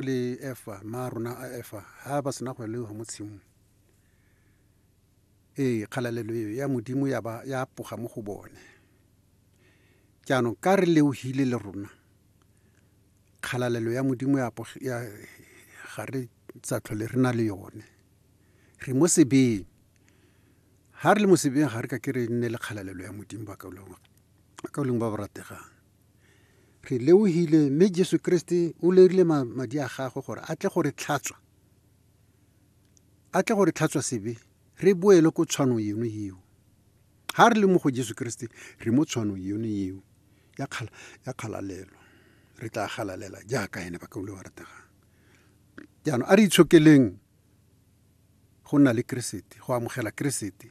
le efa ma rona a efa ha ba sena go lewa mo tshimong ee kgalalelo eo ya modimo ya ba ya poga mo go bone jaanong ka re leohile le rona kgalalelo ya modimo ya ga re tsa tlhole re na le yone re mo sebeng ha re le mo sebeng ga re ka ke re nne le kgalalelo ya modimo ba ka leng ba ba rategang Re leohile mme Jesu Keresete o lerile madi a gagwe gore a tle go re tlhatswa, a tle go re tlhatswa sebe re boele ko tshwanong eno eo. Ga re le mo go Jesu Keresete re mo tshwanong eno eo ya kgalalelo, re tla galalela jaaka ene ba ka ule wa rategang. Jaanong a re itshokeleng go nna le Keresete, go amogela Keresete.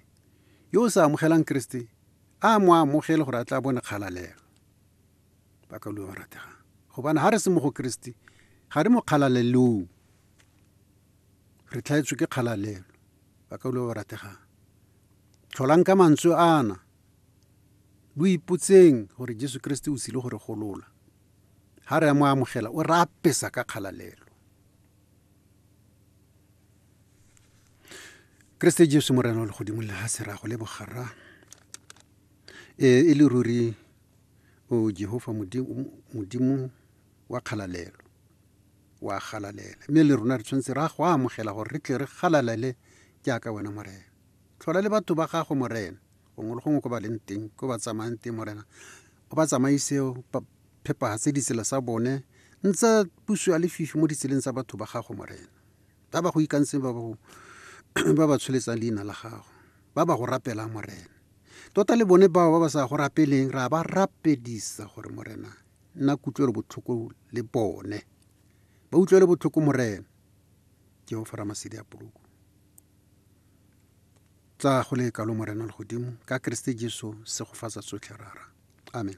Yo o sa amogelang Keresete, a mo amogele gore a tla bone kgalalega. Ba ka lua ba rategang. Gobane ga re se mo go Keresete, ga re mo kgalalelong. Re tlhaetswe ke kgalalelo. Ba ka lua ba rategang. Tlholang ka mantswe ana. Lo ipotseng gore Jesu Keresete o tsile gore golola. Ga re a mo amogela, o re apesa ka kgalalelo. keresete jesu morena o legodimo le ga sera go le bogarra e, e le ruri o jehova modimo wa kgalalelo wa galalela mme le rona re tshwanetse ra go amogela gore re tle re galalele jaaka wena morena tlhola le batho ba gago morena gongwe le gongwe ko ba leng teng ko ba tsamayang teng morena o ba tsamaise phepagatse ditsela tsa bone ntse puso ya lefifi mo ditseleng tsa batho ba gago morena ba ba go ikantseng ba ba tsholetsang leina la gago ba ba go rapelang morena tota le bone bao ba ba sa go rapeleng ra ba rapedisa gore morena nna kutlwelo botlhoko le bone ba utlwele botlhoko morena jehofa ramasedi a poloko Tla go le kalo Morena Legodimo, ka Keresete Jesu, segofatsa tsotlhe rara. Amen.